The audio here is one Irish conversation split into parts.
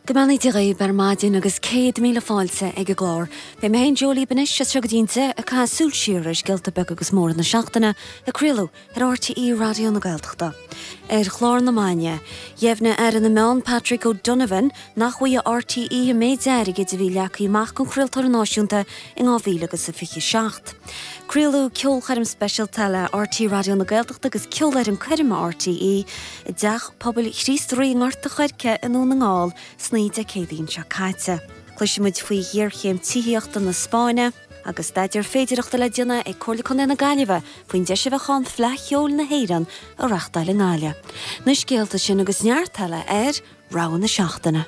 Go mbeannaí Dia dhaoib ar maidin agus céad míle fáilte ag an gclár. Beidh mé féin Jó libh anois as seo go dtí an deich ag caitheamh súil siar ar scéalta beaga agus móra na seachtaine a craoladh ar RTÉ Raidió na Gaeltachta. Ar chlár na maidine, dheimhnigh Aire na Meán Patrick O'Donovan nach bhfaighidh RTÉ an méid airgid a bhí leagtha amach don chraoltóir náisiúnta in 2027. Craoladh ceolchoirm speisialta le RTÉ Raidió na Gaeltachta agus ceolfhoireann coirme RTÉ, i dTeach Pobail Chríost Rí i nGort a' Choirce i nDún na nGall san oíche Dé Céadaoin seo caite. Cloisimid faoi ghéarchéim tithíochta na Spáinne agus staidéar féidearthachta le déanamh ag Comhairle Contae na Gaillimhe faoin deis a bheadh ann Fleadh Cheoil na hÉireann a reachtáil i nGaillimh. Na scéalta sin agus neart eile ar. Rogha na Seachtaine.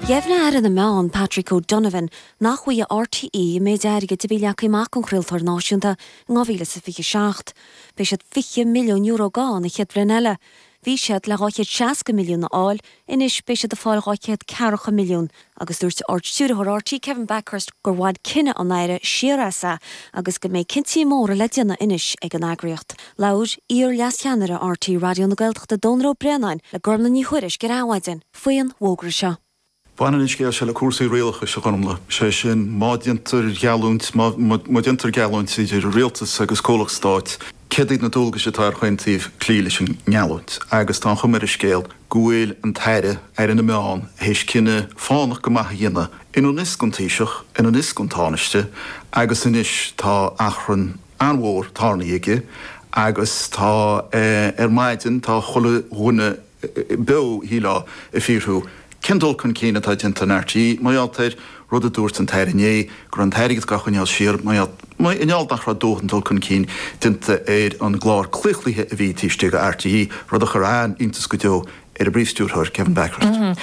Dheimhnigh Aire na Meán, Patrick O'Donovan, nach bhfaighidh RTÉ an méid airgid a bhí leagtha amach don chraoltóir náisiúnta in 2027. Beidh siad €20 milliún gann an chéad bhliain eile, Bhí siad le 260 milliún a fháil, anois beidh siad ag fáil 240 milliún agus dúirt Ard-Stiúrthóir RTÉ Kevin Bakhurst gur bhain cinneadh an Aire siar as agus go mbeidh cinntí móra le déanamh anois ag an eagraíocht. Labhair iar-leascheannaire RTÉ Raidió na Gaeltachta Dónall Ó Braonáin le Gormlaith Ní Thuairisg ar Adhmhaidin faoin bhfógra seo. Baineann an scéal seo le cúrsaí rialachais, a Ghormlaith, sé sin má déantar geallúint, má déantar geallúint idir rialtas agus comhlacht stáit, céard iad na dualgais atá ar chaon taobh cloí leis an ngeallúint? Agus tá an chuma ar an scéal go bhfuil an tAire, Aire na Meán, théis cinneadh fánach go maith a dhéanamh, i ngan fhios don Taoiseach, i ngan fhios don Tánaiste, agus anois tá achrann an-mhór, tarraingthe aige agus tá, ar maidin, tá chuile dhuine, beo, shílfeá, ag fiafraí. Cén dul cun cinn atá déanta in RTÉ, mar gheall ar an rud a dúirt an t-Aire inné, go raibh an t-airgead ga choinneáil siar, mar gheall, mar gheall nach raibh dóthain dul cun cinn déanta ar an gclár claochlaithe a bhí taobh istigh de RTÉ, rud a chuir an-iontas go deo ar an bPríomhstiúrthóir, Kevin Bakhurst.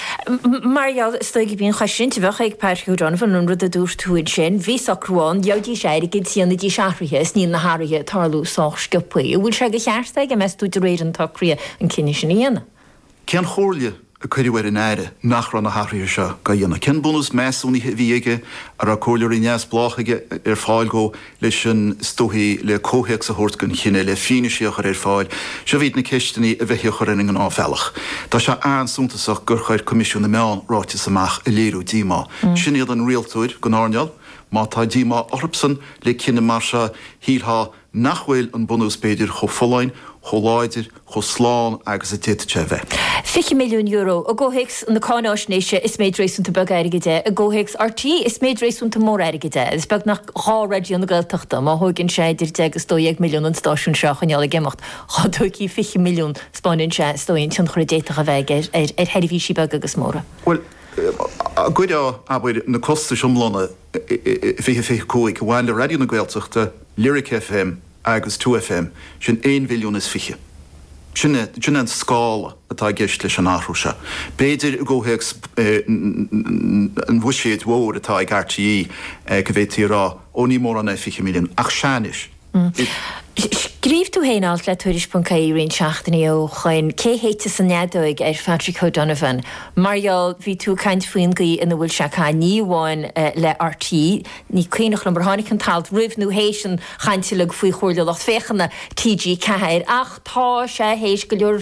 Mar gheall, is dóigh, b'in an chosaint a bheadh ag Patrick O'Donovan an rud a dúirt tú ansin, bhí socrú ann, gheobhaidís airgead, dhéanfaidís athruithe, is níl na hathruithe ag tarlú sách sciobtha. An bhfuil sé de cheart aige, meas tú, de réir an tsocraithe an cinneadh sin a dhéanamh. Cén chomhairle a cuireadh ar an Aire nach raibh na hathruithe seo ga dhéanamh? Cén bunús measúnaithe a bhí aige an raibh comhairleoirí neamhspleácha ar fáil dhó leis an is dóigh le comhthéacs a thabhairt don chinneadh, le fianaise a chur ar fáil? Seo iad na ceisteanna a bheití a chur ar an ngnáthbhealach. Tá sé an-suntasach gur chuir Coimisiún na Meán ráiteas amach a léiriú díomá. Sin iad an rialtóir, don earnáil, má tá díomá orthusan le cinneadh mar seo, shílfeá, nach bhfuil an bunús b'fhéidir chomh folláin, chomh láidir, chomh slán agus a d'fhéadfadh sé a bheith. €20 milliún, i gcomhthéacs na cáinfháisnéise is méid réasúnta beag airgid é, i gcomhthéacs RTÉ is méid réasúnta mór airgid é, is beag nach dhá Raidió na Gaeltachta, má thógann sé idir deich agus dó dhéag milliún an stáisiún seo a choinneáil ag imeacht, dhá dtógfá fiche milliún, spáineann sé is dóigh an tionchar a d'fhéadfadh a bheith aige ar sheirbhísí beaga agus móra. Bhuel, a gcuirfeadh, abair, na costais iomlána 2025, a bhain le Raidió na Gaeltachta, Lyric FM agus Two FM, sin aon mhilliún is fiche. Sin é, sin é an scála atá i gceist leis an athrú seo. B'fhéidir i gcomhthéacs an bhuiséid mhóir atá ag RTÉ go bhféadfaí a rá, ó ní mórán é fiche milliún, ach sea anois. Scríobh tú féin alt le Tuairisc.ie roinnt seachtainí ó shoin, Cé shéidfeas an Fheadóig? ar Phatrick O'Donovan. Mar gheall, bhí tú ag caint faoin gcaoi ina bhfuil sé ag caint, ní amháin le RTÉ, ní cuimhneach liom ar tháinig an t-alt roimh nó théis an chaint uilig faoi Chomhairle Lucht Féachana TG4, ach tá sé théis go leor.